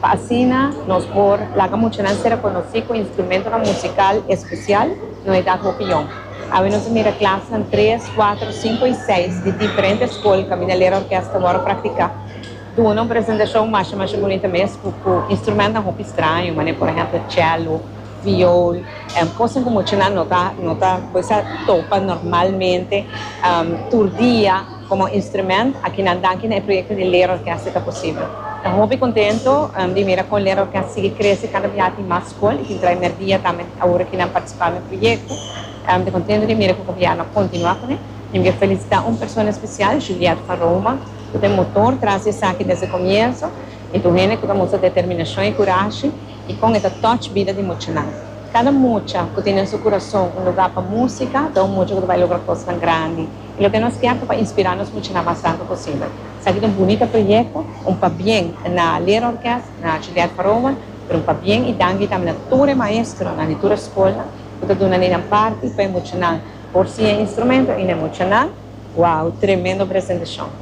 Pa asina nos por laga muchanan ser rekonosí ku instrumentonan musikal espesial, no edat hopi yòn. Awe nos a mira klasnan tres, kuater, sinku i seis di diferente skol kaminda lera orkes ta wòrdu praktiká duna un presentashon masha masha bunita mes ku ku instrumentnan hopi straño manera por ehèmpel chèlo, viol, kosnan ku muchanan no ta no ta kisa topa normalmente tur dia. Komo instrumènt, akinan danki na e proyekto di Leerorkest e ta posibel. Ta hopi kontento di mira kon Leerorkest sigui krese kada biaha tin mas skol i tin trai mer dia tambe awor aki nan partisipá na e proyekto. Mi ta kontento di mira ku Gobièrnu a kontinuá ku ne i mi ke felisitá un persona spesial, Juliette van Roma, ku ta e motor tras di esaki desde komienso i tur hende ku ta mustra determinashon i kurashi i kon e ta touch bida di muchanan. Kada mucha ku tin den su kurason un lugá pa músika ta un mucha ku ta bai logra kosnan grandi. i lo ke nos kier ta pa inspirá nos muchanan mas rantu posibel. Esaki ta un bunita proyekto, un pabien na Leerorkest, na Juliette Paroman, pero un pabien i danki tambe na tur e maestronan di tur e skolnan ku ta duna nei nan parti pa e muchanan por siña e instrumento i na e muchanan, wow, tremendo presentashon.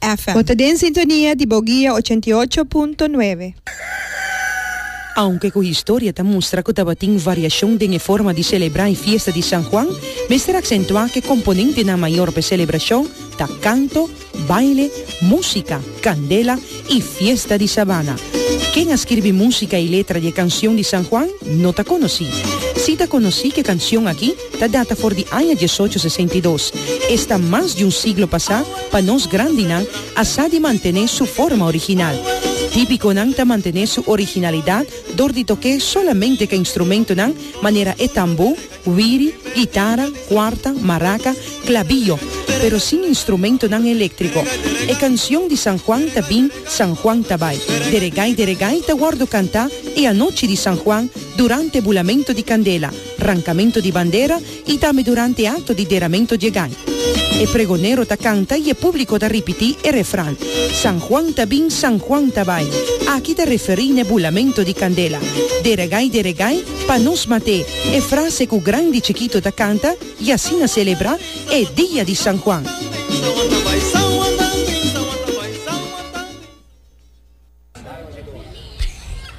FM. Bo ta den sintonia di bo guia ochenta i ocho punto nuebe. Aunke ku historia ta mustra ku tabatin variashon den e forma di selebrá e fiesta di San Juan, mester aksentuá ku e komponentenan mayor pa e selebrashon ta kanto, baile, músika, kandela i fiesta di sabana. Ken a skirbi músika i letra di e kanshon di San Juan no ta konosí. Sí ta konosí ku e kanshon aki. ta data for di aña diesocho sesenta i dos. Esta mas di un siglo pasá pa nos grandinan a sa di mantené su forma original. Típiconan ta mantené su originalidad dor di tok'é solamente ca instrumentonan manera e tambó, wiri, guitarra, cuarta, maraca, clabillo, pero sin instrumentonan eléctrico. E cancion di San Juan ta bin, San Juan ta bai. Deregay, deregay ta wordo cantá e anochi di San Juan durante e bulamento di candela. Rankamentu di bandera y tambe durante acto di deramentu dje gai. E pregonero ta canta y e publico ta ripiti e refran, San Juan ta bin, San Juan ta bai. Aki ta referi n'e bulamentu di candela. Deregai, deregai, pa nos mate, e frase cu grandi y chikito ta canta y asina celebra e dia di San Juan.